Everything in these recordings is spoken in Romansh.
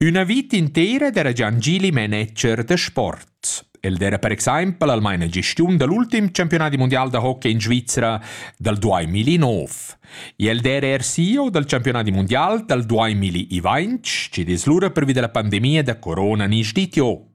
Üna vita intera d'era Giangili manager da sport. El era per exempel almain la gestiun da l'ultim campionat mundial da hockey in Svizra dal 2009. E el era er CEO dal campionat mundial dal 2020, che es lura pervi da la pandemia da corona nis ditio.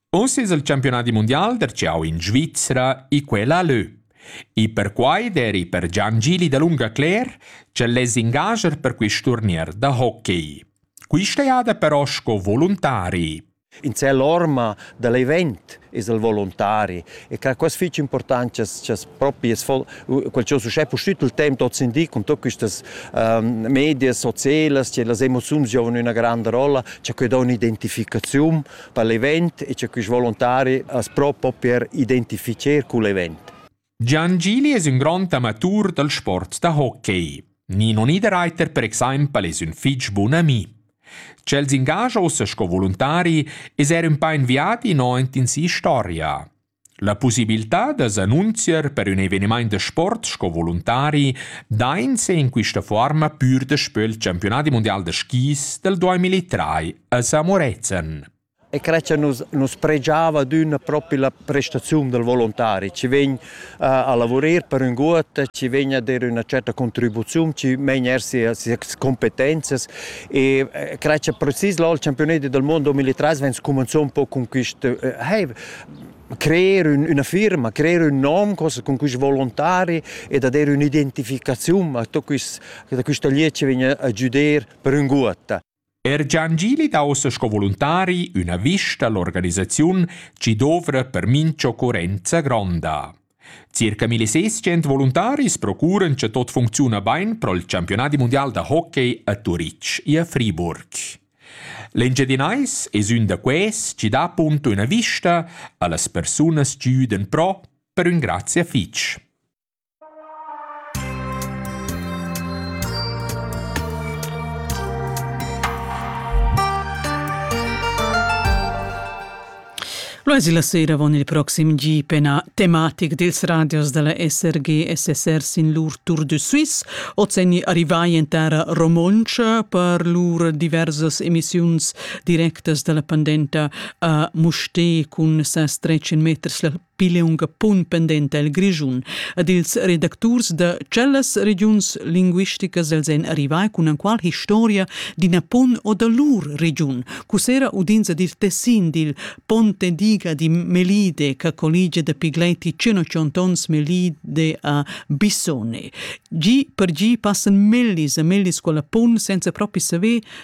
Uss es il campiunadi mundial darcheu in Svizra e quella lö. E perquai d'eri per Gian Gili dalunga cler ch'el less ingager per quist turnier da hockey. Quista jada però sco voluntari. In sé l'orma da l'event es il volontari e ca quas fich important chas chas propi es vol quel cha uschè pustüt il temp hoz in di con tot quistas ehm, medias sozialas che las emoziuns giovan üna granda rolla cha que dà un'identificaziun per l'event e che quist volontari as propo per identificher cul event. Gian Gili es ün grond amatur dal sport da hockey. Nino Niederreiter per exaimpel es ün fich bun ami. Ch'el s'ingagia ussa sco volontari es eir ün pa inviati no aint in si storia. La pussibiltà da s'annunzier per ün evenimaint da sport sco voluntari dainsa in quista fuorma pür daspö il Championadi mundial da skis dal 2003 a Samorezen. E Creccia nus, nus pregiava d'ün propi la prestaziun del volontari. Ci vegn uh, a lavurer per ün gut, ci vegn a der üna certa contribuziun, ci vegn er sia, sia competenzias e Creccia precis là il Championati del mondo 2003 vegn cumanzò un po con quist uh, hey, creer ün, üna firma, creer ün nom cun quist volontari e da der ün'identificaziun a quist, da quista liet chi vegna a giuder per ün guotta. Er Gian Gili dà ossa sco volontari üna vista all'organisaziun chi dovra per mincha occorrenza gronda. Circa 1600 voluntaris procuran che tot funcziuna bain pro il campionat mundial da hockey a Turitg e a Friburg. L'Engiadinais es ün da quels chi dà appunto üna vista a las persunas chi güdan pro per ün grazia fich. Lo es la sera avon il proxim GP na tematic dils radios della SRG SSR sin lur Tour de Suisse, ozenni arrivai en terra romontscha per lur diversas emissiuns directas della pendenta a Musté cun ses 13 meters la pileunga pun pendenta el Grischun ed ils redacturs da tschellas regiuns linguisticas els ein arrivai cun enqual historia d'ina pon o da lur regiun. Cussera udins ed il tessin dil Ponte Diga di Melide che colligia da pigleiti 100 ons Melide a Bissone. Gi per gi passan mellis e mellis quella pon senza propi saver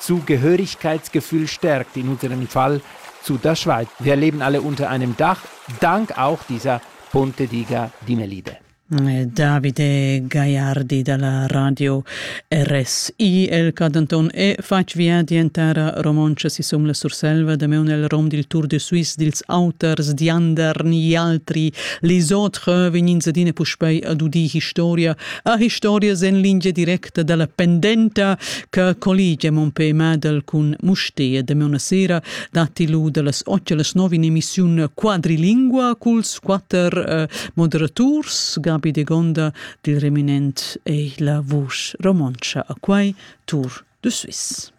Zu Gehörigkeitsgefühl stärkt in unserem Fall zu der Schweiz. Wir leben alle unter einem Dach, dank auch dieser Ponte diga Dinelide. Eh, Davide Gaiardi dalla radio RSI el Cadanton e fatg via dientara romontscha sisum la Surselva da meun el rom dil Tour de Suisse dils auters diander ni altri les autres vegnin zadine puspei ad udi historia a historias en lingia direct act dalla pendenta che colligia mon pe Madel cun Mustea de una sera datti lu dallas 8 alle 9 in emissione quadrilingua culs quatter eh, moderaturs Gabi de Gonda dil Reminent e la vusch romoncia a quai Tour de Suisse.